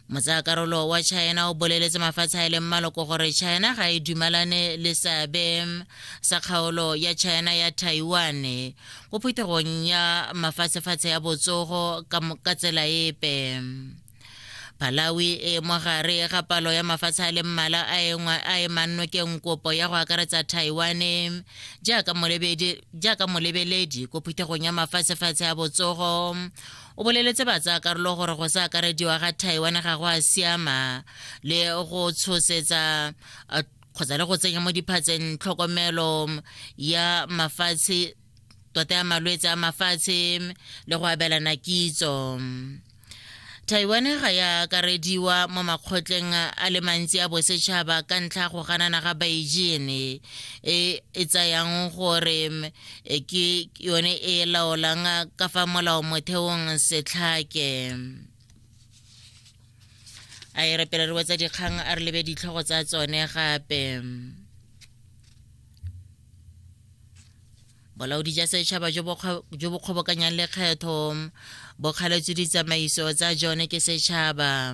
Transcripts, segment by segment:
motsayakarolo wa china o boleletse mafatshe a e leng maloko gore china ga e dumalane le seabe sa kgaolo ya china ya taiwan ko phuthegong ya mafatshefatshe ya botsogo ka tsela epe Malawi e mogare ga palo ya mafatshe a le mmala a e, e mannokeng kopo ya go akaretsa Taiwan jaaka molebeledi ko phuthegong ya mafatshefatshe a botsogo O boleletse batsaakarolo gore go sa akarediwa ga Taiwan ga go a siama le go tshosetsa kgotsa le go tsenya mo diphatseng tlhokomelo ya mafatshe tota ya malwetse a mafatshe le go abelana kitso taiwan ga ya akarediwa mo makgotleng a le mantsi a bosetšhaba ka ntlha go ganana ga beijing e e tsayang gore e ke yone e laolang ka fa molao motheong setlhake a e re pele re wetsa dikgang a re lebe ditlhogo tsa tsone gape bolaodi ja setšhaba jo bo kgobokanyang lekgetho bo kgaletswe ditsamaiso tsa jone ke setšhaba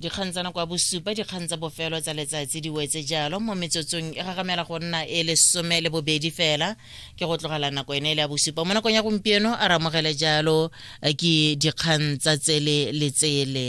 dikgang tsa nako ya bosupa dikgang tsa bofelo tsa letsatsi di wetse jalo mo metsotsong e gagamela go nna e lesome le bobedi fela ke go tlogela nako ene e le ya bosupa mo nakong ya gompieno a ramogele jalo eh, ke dikgang tsa tsele le tsele